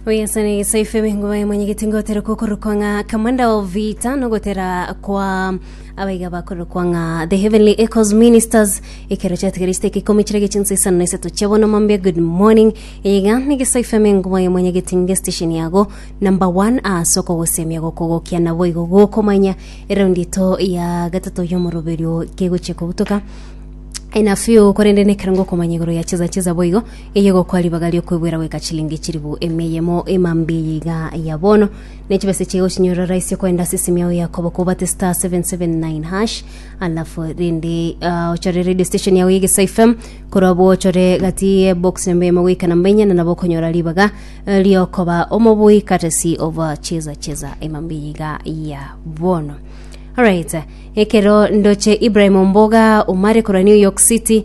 Oyasana egesaife bengo baye mwenyegeti ngotera kokorokwa ng'a Commander of Vita nogotera kwa abaiga bakorokwa ng'a The Heavenly Echoes Ministers ekero chatigara isiteka ikomi chire gechinsa isano na isato chiabona mambia good morning iga negesaife mengo baye mwenyegeti nge station yago number one ase okogosemia gokogokia nabo igo gokomanya eraundi eto ya gatato yomoroberio kegochia kobutoka ena few korende nekero ngokomanya igoro ya cheza cheza boigo Eye egokoa ribaga ri'okwegwera goika chilingi chilifu emia eyemo ema mbe eye iga ya bono, ne chibesa chiaye ogochinyuorora raisi okoenda ase esimi yao ya koboko obate star 779 hash, alafu rende ah, ochore radio station yao ya Egesae FM, korwa abwo ochore gati ye box namba eyemo goika namba inya, na nabo okonyora ribaga eh, ri'okoba omobui courtesy of ah, cheza cheza ema mbe eye iga ya bono. Alright, ekero ndoche Ibrahim Omboga omare korwa New York City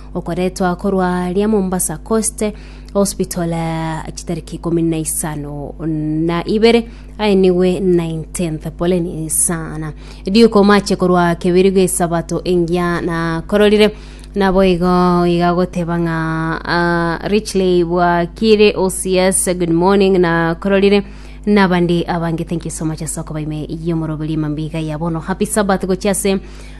okoretwa korwa aria Mombasa Coast Hospital eh, chitariki ikumi na isano na ibere aenigwe 19th poleni sana riuko mache korwa kebiri gwesabato engiya na kororire nabo igo iga goteba ng'a ah, richly bwakire ocs good morning na kororire nabandi abange thank you so much ase okobaime yomoroberia mambia iga yabono happy sabbath gochia ase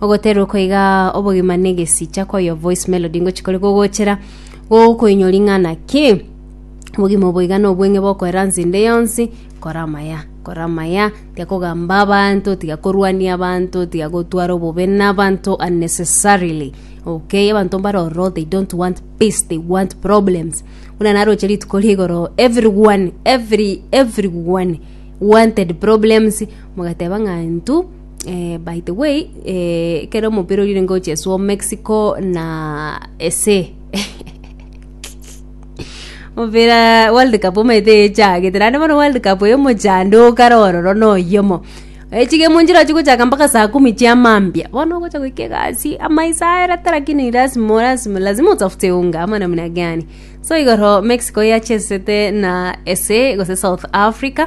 Ogoterwa koiga obogima negesicha koyo voice melody ngochi kore gogochera gokoinyo ring'ana ki obogima oboiga na obweng'e bokoera nsende yonsi kora amaya kora amaya tiga kogamba abanto tiga korwania abanto tiga gotwara obobe na abanto unnecessarily okay abanto mbare ororo they don't want peace they want problems buna naroche rituko rigoro everyone every everyone wanted problems mogateba ng'a intwe Eh, by the way eh, kere omopira orire ngo cheswo mexico na ese omopira world cup omaete echagete naende bono world cup eyo omochando okare ororo noyomo echige monchira chigochaka mpaka saa kumi chia mambia bono ogocha goika egasi amaiso aerete lakini lasima lasima lazima utafute unga ama namna gani so igoro mexico yachesete na ese gose south africa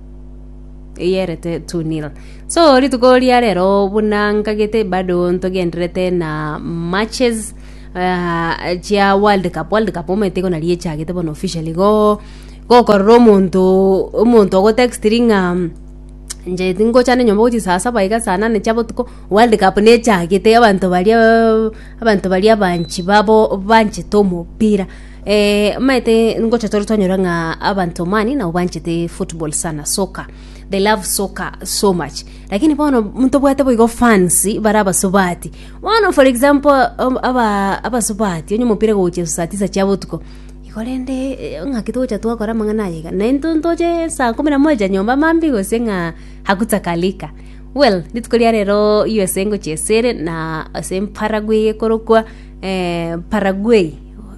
eyerete 2-0 so rituko ria rero buna nkagete bado ntogenderete na matches ah, chia world cup world cup omanyete igo nari echagete bono officially go gokorora omonto omonto ogotextiri ng'a nche tingochande nyomba gochia saa saba iga saa nane chia botuko world cup nechagete abanto baria abanto baria abanchi babo banchete omopira. Eeh maete ngocha tore twanyora ng'a abanto mani nabo banchete football sana soccer they love soccer so much lakini bono ntobwate boigo fans bare abasubati bono for example um, aba abasubati onye omopira gochia saa tisa chia botuko igo rende eh, ng'aki togocha twakora amang'ana aya iga na intwe ntoche saa kumi na moja nyomba mambi gose ng'a hakutakalika well rituko ria rero usa ngochia esere na ase paraguay ekorokwa eh, paraguay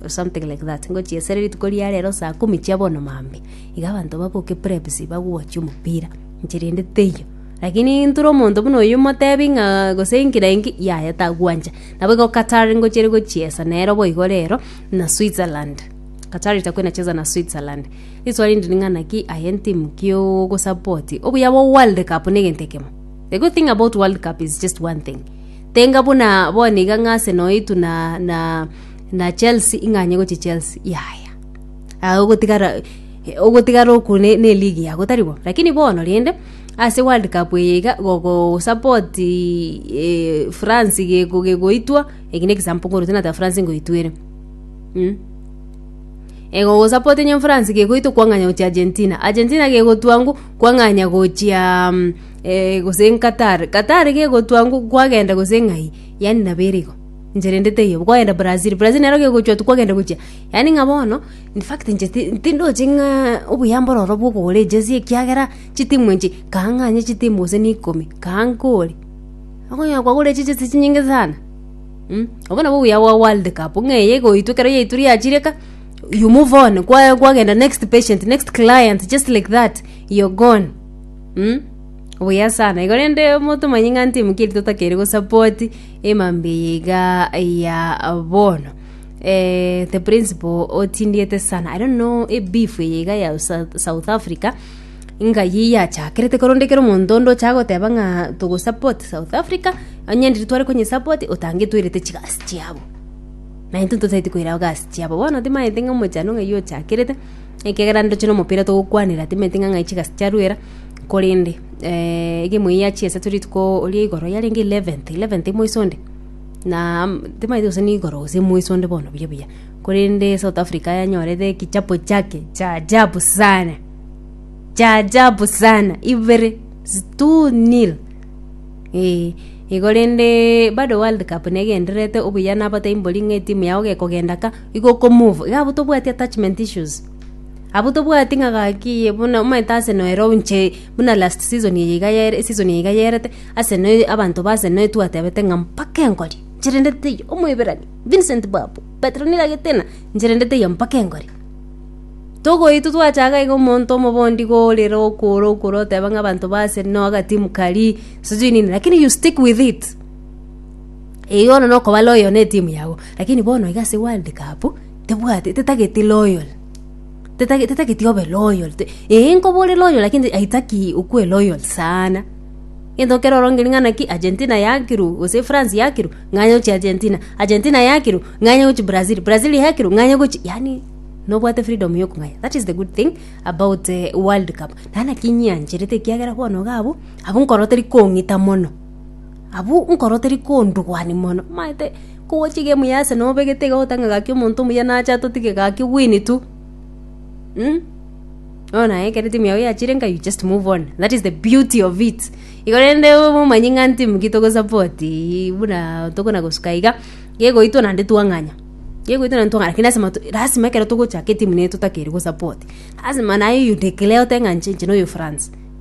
something like that ngochia esere rituko ria rero saa kumi chia bono maambia iga abanto baboke preps bagochia omopira inche rende teiyo lakini ntore omonto buna oyo motebi ng'a gose enki na enki yaya tagwancha nabo igo Qatar ngochia gochiesa nero boigo rero na Switzerland Qatar itakuwa inacheza na Switzerland rituko rinde ning'a naki aye entimu ki ogosupport obuya bwa world cup na egento ekemo the good thing about world cup is just one thing tenga buna bono iga ng'a Arsenal eitwe na na. na chelsea ing'anye gochia chelsea yaya aye ogotigara ogotigara oku ne ne eligi yago tari bo lakini bono rende ase world cup eye iga gogosapot eeh france geko gegoitwa eki ne egesample nkorwa nata france ngoitwa ere mh. Egogosapot onye france gegoitwa kwang'anya gochia argentina argentina gegotwa ngwa kwang'anya gochiaa eeh gose qatar qatar gegotwa ngwa kwagenda gose ng'ai yaani nabo ere igo. Enchera ende teiyo, bwogenda Brazil, Brazil nero gegochwa tu kwagenda gochia. Yaani ng'a bono, in fact inche ti- tindoche ng'a obuya mbore ororo bwa okogora ejezi ekiagera chitimu enche, kaa ng'anye chitimu gose na ikomi, kaa nkore. Okonyora kwagorire chijezi chinyinge sana, mm obwo nabwo obuya bwa world cup, ng'a eye egoitwa ekero yaitwa riachire ka, you move on kwa kwagenda next patient, next client, just like that, you're gone mm obuya sana. Igo rende motomanye ng'a ntimu ki eri totakeire gosupport. emambi eye iga ya bono eh, the principal otindiete sana i don't know ebeef eye iga ya Sa- south africa ngai yachakerete koronde kero omonto onde ocha goteba ng'a togosupport south africa onye ndiri tware konyisupport otange toirete chigasi chiabo naintwe totaeti koirago gasi chiabo bono timaete ng'a omochando ng'ai ochakerete ekiagera ndoche na omopira togokwanera timanyeti ng'a ng'ai chigasi chiaruera, korende egemu eye yachia ase rituko ria igoro yarenge eleventh, eleventh moiso onde na am timanyeti gose nigoro gose moiso onde bono buya buya, korende South Africa yanyorete egechapo chiake cha ajabu sana, cha ajabu sana, ibere zi two nil eeh. Igo rende bado world cup negendererete obuya nabote mbori ng'a etimu yago gekogenda ka. igo oko move, iga abwo tobwati attachment issues. Abwo tobwati ng'a gaki eye buna omanyete Arsenal ero inche buna last season eye iga yere eseason eye iga yerete, Arsenal eye abanto ba Arsenal eye twatebete ng'a mpaka engorie, inche rende teiyo, Omoiberania, Vincent Babu, Petronila Getina, inche rende teiyo mpaka engorie. Togoitwa twachaka iga omonto omoba onde iga orire okora okora oteba ng'a abanto ba Arsenal agatimu karia, sijui nini, lakini you stick with it. Ee, ono nokoba loyal netimu yago, lakini bono iga ase world cup, tebwati tetageti loyal tetageti tetageti obe loyal te ee nkoba ore loyal lakini aitaki okwe loyal saana. Egento ekero orongiri ng'a naki Argentina yakirwa gose France yakirwa, ng'anye gochia Argentina, Argentina yakirwa, ng'anye gochia Brazil, Brazil yakirwa, ng'anye gochia yaani nobwate freedom ya okong'aya that is the good thing about world cup. Naende naki ng'iancherete ekiagera bono iga abwo, abwo nkoro teri kong'ita mono. Abwo nkoro teri kondugwani mono, manyete kogochia egemu ya Arsenal obegete iga ogotenga gaki omonto omuya nache atotige gaki owini tu mm bono naye ekero timu yago yachire nka you just move on that is the beauty of it igo rende omanye ng'a ntimu ki togosupport ii buna tokona gosuka iga gegoitwa naende twang'anya gegoitwa naende twang'anya lakini lasima to lasima ekero togochaka etimu nere totakeire gosupport lasima naye you declare oteba ng'a inche inche noyo France.